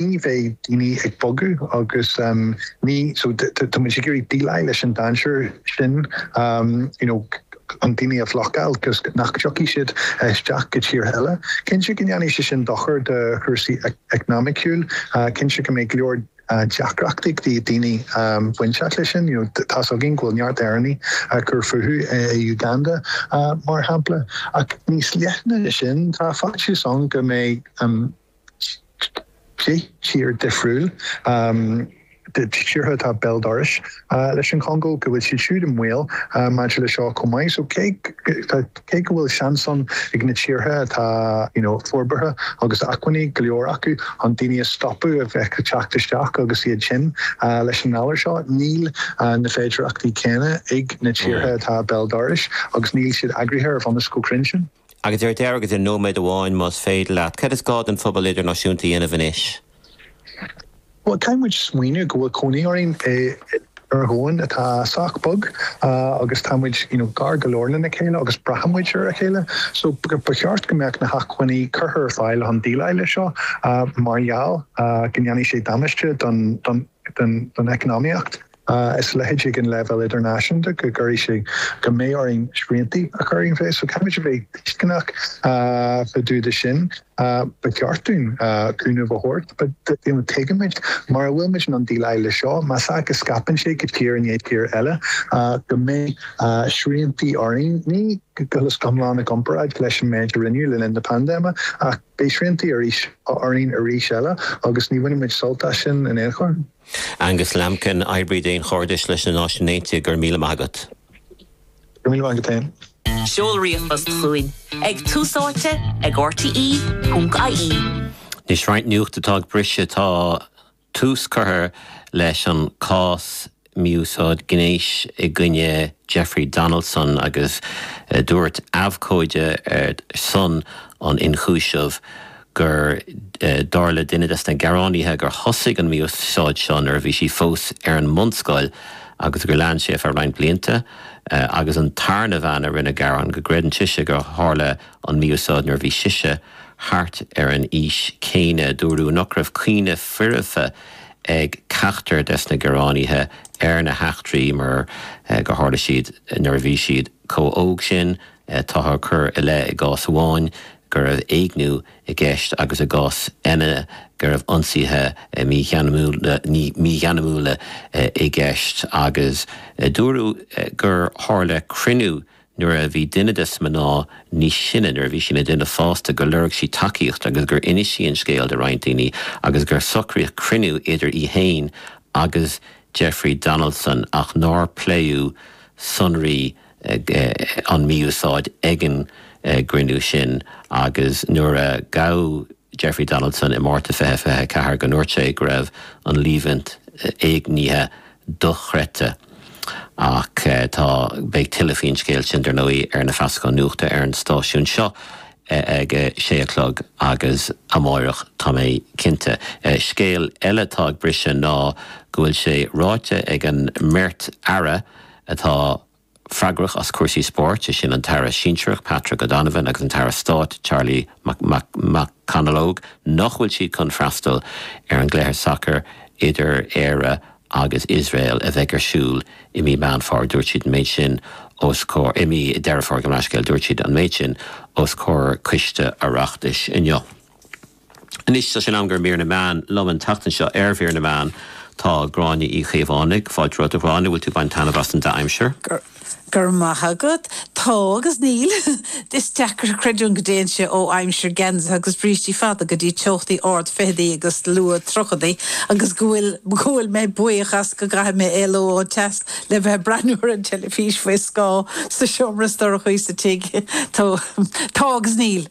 ní bheidh daoine ag bogadh agus ní so tá muid ag iarraidh déileáil leis an dainséar sin you know chun daoine a bhlocáil agus nach dtiocfaidh siad isteach go tíortha eile. Cinnte go ndéanfaidh sé sin dochar do chúrsaí eacnamaíocha, cinnte go mbeidh go leor deacrachtaí ag daoine bainteach leis sin, you know tá's againn go bhfuil neart Éireannaigh ag cur fúthu i Uganda mar shampla ach níos leithne na sin tá faitíos ann go mbeidh an deich dtír dhifriúla de thíortha atá béal dorais leis an Chongó, go bhfuil siad siúd i mbaol maidir leis seo chomh maith. So cé go bhfuil seans ann ag na tíortha atá you know forbartha agus acmhainní go leor acu chun daoine a stopadh a bheith ag teacht isteach agus iad tinn leis an ngalar seo, níl na féidireachtaí céanna ag na tíortha atá béal dorais agus níl siad eagraithe ar bhunús chomh cruinn sin. Agus ar deireadh, i nóiméad amháin más féidir leat, cad is gá don phobal idirnáisiúnta a dhéanamh anois? Bhuel, caithfidh muid smaoineamh go bhfuil cónaí orainn ar dhomhan atá sách beag agus tá muid i ngar go leor lena chéile agus braitheann muid ar a chéile. So, ba cheart go mbeadh na hacmhainní curtha ar fáil chun déileáil leis seo mar gheall go ndéanfaidh sé damáiste don don don eacnamaíocht is a leithéidí ag an leibhéal idirnáisiúnta go gcuirfidh sé go mbeidh orainn sriantaí a chur i bhfeidhm so caithfimid a bheith tuisceanach fá dtaobh de sin. Ba cheart dúinn cúnamh a thabhairt but you know tuigimid mura bhfuil muid in ann déileáil le seo, má scaipeann sé go tír i ndiaidh tír eile go mbeidh sriantaí orainn, ní go hiomlán i gcomparáid leis an méid a rinneadh le linn na paindéime ach, Beidh sriantaí arís orainn arís eile. Agus ní bhainfidh muid sult as sin in aon chor. Angus Lambkin, Oibrí Daonchairdis leis na Náisiúin Aontaithe, Go raibh míle maith agat. Go raibh míle maith agat féin. Seol ríomhphost chugainn ag tusaite ag rte.ie. Anois roinnt nuacht atá ag briseadh. Tá. Tús curtha leis an chás mí-úsáid gnéis i gcoinne Jeffrey Donaldson agus dúirt abhcóide ar son an ionchúisimh gur, dar le duine des na gearánaithe, gur thosaigh an mí-úsáid seo nuair a bhí sí fós ar an mbunscoil agus gur lean sé ar feadh roinnt blianta agus an tarna bhean a rinne gearán go gcreideann sise gur tharla an mí-úsáid nuair a bhí sise thart ar an aois chéanna. Dúradh nach raibh cuimhne fhoirfe ag ceachtar des na gearánaithe ar na heachtraí mar gur tharla siad nuair a bhí siad chomh hóg sin. Táthar ag cur i leith i gcás amháin go raibh éigniú i gceist agus i gcás eile go raibh ionsaithe mígheanasacha i gceist agus dúradh gur tharla cruinniú nuair a bhí duine des mná níos sine, nuair a bhí sí ina duine fásta, gur lorg sí tacaíocht agus gur inis sí an scéal do roinnt daoine agus gur socraíodh cruinniú idir í féin agus Jeffrey Donaldson ach nár pléadh sonraí an mhí-úsáid ag an gcruinniú sin agus nuair a ghabh Jeffrey Donaldson i Márta 2024 go ndúirt sé go raibh an líomhaint éignithe dochreidte. Ach tá, beidh tuilleadh faoin scéal sin, dar ndóigh, ar na feasacháin nuachta ar an stáisiún seo ag a sé a chlog agus amárach, tá mé cinnte. Scéal eile atá ag briseadh ná go bhfuil sé ráite ag an mbeirt aire atá freagrach as cúrsaí spóirt, is é sin an tAire sinsearach Patrick O'Donovan agus an tAire Stáit Charlie McConalogue, nach bhfuil siad chun freastal ar an gcluiche sacair idir Éire agus Iosrael a bheidh ar siúl i mí Mheán Fómhair. Dúirt siad an méid sin os comhair, i mí Deireadh Fómhair gabh mo leithscéal. Dúirt siad an méid sin os comhair coiste Oireachtais inniu. Anois tá sé in am i gcomhair mír na meán. Liom an tseachtain seo ar mhír na meán tá Gráinne Uí Chaomhánaigh. Fáilte romhat, a Ghráinne, an bhfuil tú ag baint taitneamh as an dea-aimsir? Go raibh maith agat. Tá agus níl. Is deacair a chreidiúint go dtéann sé ó aimsir geansaithe agus brístí fada go dtí teochtaí ard fichidí agus luath tríochaidí agus go bhfuil go bhfuil mé buíoch as go gcaithfidh mé éalú ón teas le bheith ag breathnú ar an teilifís faoi scáth sa seomra is dorchaí sa tigh. Tá agus níl.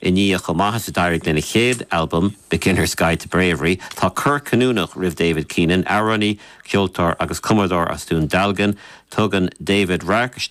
I ndiaidh chomh maith is a d'éirigh lena chéad albam, Beginner's Guide To Bravery, tá cor cinniúnach roimh David Keenan, amhránaí, ceoltóir agus cumadóir as Dún Dealgan. Tugann David radharc isteach.